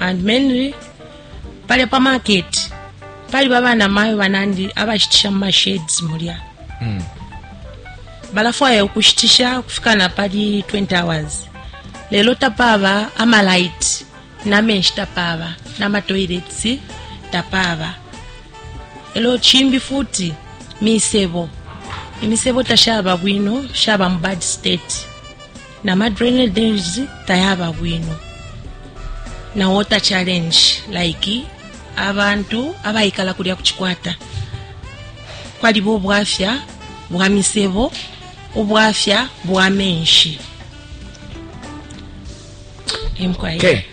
and mainly palya pa market paliba bana mayo banandi abashitisha mu mashades mulya mm. balafwaya ukushitisha ukufika na pali 20 hours lelo tapaba amalight namenshi tapaba namatoilets tapaba elo chimbi futi misebo imisebo tashaba bwino shaba mu bad state na ma drainages tayaba bwino na water challenge like abantu abaikala kulya kuchikwata kwaliba obwafya bwa misebo obwafya bwa menshi emkwaye okay.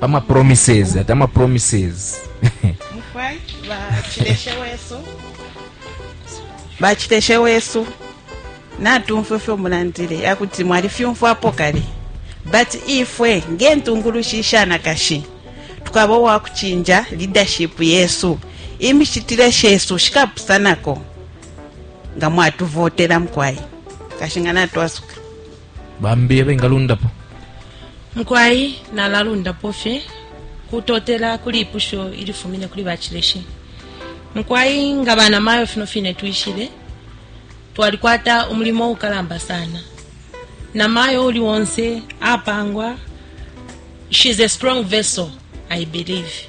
ama promises ati ama promises mukwai bachileshe wesu bachileshe wesu natumfwe fyo mulandile akuti mwali fyumfwapo kale but ifwe ngentungulushi ishanakashi tukaba uwakuchinja leadership yesu imishitile shesu shikapusanako nga mwatuvotela mukwai kashinga natwasuka Bambi abengalundapo? Mukwai nalalundapo fye kutotela kuli ipusho ilifumine kuli bacileshi. Mukwai nga bana mayo fino fine twishile, twalikwata umulimo ukalamba sana. Na mayo uli onse apangwa, she's a strong vessel, I believe.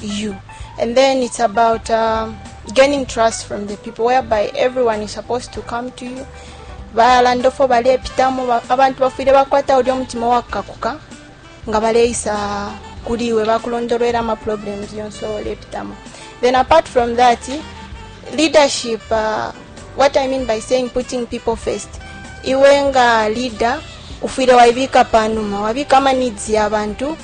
you. And then it's about um, gaining trust from the people, whereby everyone is supposed to come to you. balandofo balepitamo ba- abantu bafwile bakwata ulya omutima wakakuka nga baleisa kuli iwe bakulondolwera amaproblems yonse olepitamo then apart from that leadership uh, what i mean by saying putting people first iwe nga leader ufwile waibika panuma wabika ama needs y'abantu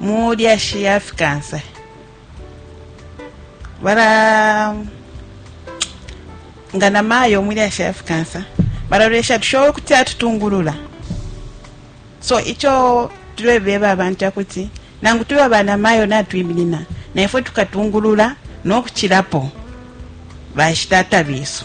mu lyashi ya fikansa bara nga na mayo mu lyashi ya fikansa bararwesha tushoboye kuti atutungurura so icyo turebeba abantu akuti nangu tube abana mayo natwiminina naifwe tukatungurura n'okukirapo bashitata biso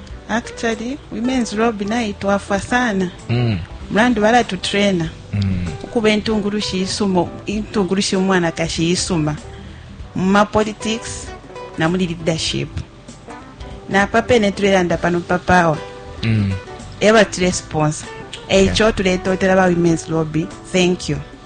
Actually, Women's Lobby nayo itwafwa sana mm. mulandu balatutraina mm. ukuba intungulushi isuma intungulushi umwanakashi isuma mu mapolitics na muli leadership napa pene tulelanda pano papawa mm. eba tulesponsa eico okay. tuletotela ba women's lobby thank you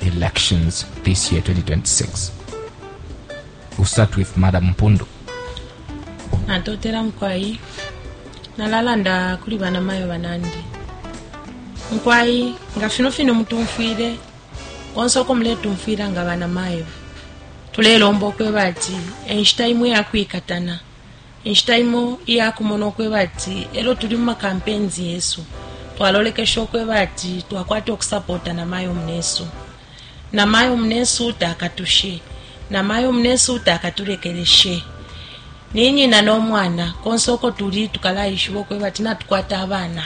elections this year 2026 we'll start with madam mpundu natotela mukwai nalalanda kuli banamayo banandi mukwai nga fino fino mutumfwile konse uko muletumfwila nga banamayo tulelomba ukweba ati enshita imwe yakwikatana Inshita imo iya kumona ukweba ati elo tuli muma campaigns yesu twalolekesha ukweba ati twakwata ukusapota namayo munesu. Namayo munesu takatushe. Namayo munesu takatulekeleshe. Ni nyina no mwana. Konse uko tuli tukalaishiba ukweba ati natukwata abana.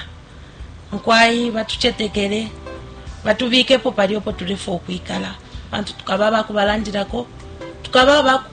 Mukwai batucetekele, batubikepo palya upo tulefwa ukwikala pantu tukaba abakubalandilako, tukaba abaku.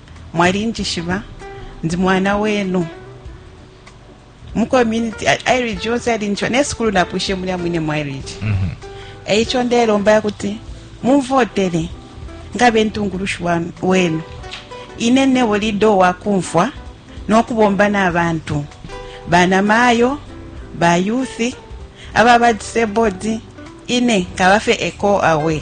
Mwalinjishiba, ndi mwana wenu. Mu community, Irige yonse yalinjishiba. Ne sukulu napwishe mulya mwine mu Irige. Mm -hmm. E ico ndelomba ya kuti mumvotele ngabe ntungulushi wenu. Ine nebo lido wa kumfwa no kubomba na bantu. Bana mayo, ba youth, ababa disabled, ine kabafe echo away.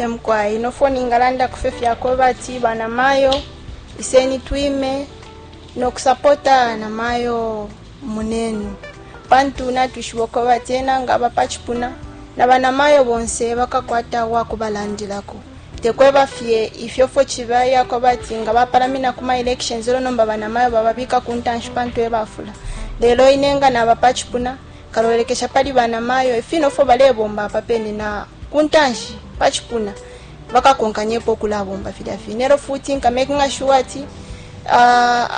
Ee mukwai, no 4 ningalandako fye fya kweba ati banamayo iseni twime no kusapota namayo munenu, pantu natwishiba ukweba ati ena nga aba pa cipuna na banamayo bonse bakakwata uwa kubalandilako. Te kweba fye ifyo fwe ciba iya kweba ati nga bapalamina ku ma elections e lyo nomba banamayo bababika ku ntanshi pantu e bafula, lelo ine nga naba pa cipuna Nkalolekesha pali bana mayo ifino ifwo balebomba apa pene na kuntanshi pa cipuna bakakonkanyepo ukulabomba filya fine. Elo futi nka makinga sure ati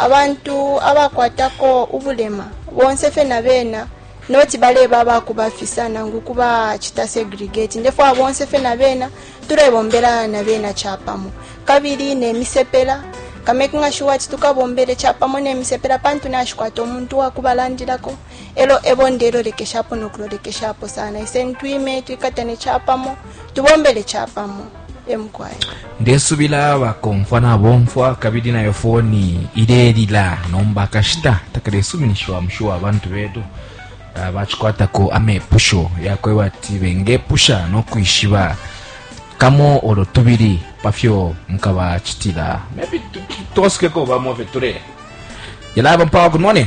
abantu abakwatako ubulema bonse fye na bena noti baleba abakubafisa nangu kubacita segregate. Ndefwaya bonse fye na bena tulebombela na bena capamo. Kabili ne misepela, nka makinga sure ati tukabombele capamo ne misepela pantu nashikwata umuntu uwakubalandilako. elo ebo ndelolekeshapo no kulolekeshapo sana iseni twime twikatane capamo tubombele capamo emukwai ndesubila bakomfwa nabomfwa kabili nayo foni ilelila nomba akashita takalesuminishiwa mushuwa abantu betu ah, bacikwatako amepusho yakweba ati bengepusha no kwishiba kamo olo tubili pafyo mukabacitila maybe tu- tu- twasukeko bamo fye tule yalaba mpawa good morning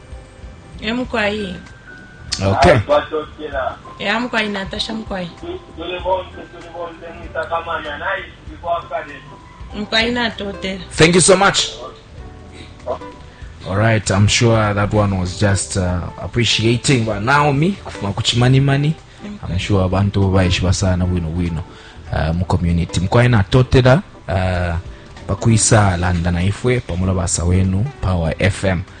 emukwai okay ya mukwai natasha mukwai mukwai natotela thank you so much All right, I'm sure that one was just uh, appreciating but Naomi kufuma kuchimani mani. I'm sure abantu baishiba sana bwino bwino uh, mu community. Mkwai na totela uh, pakuisa landa na ifwe pamola basa wenu Power FM.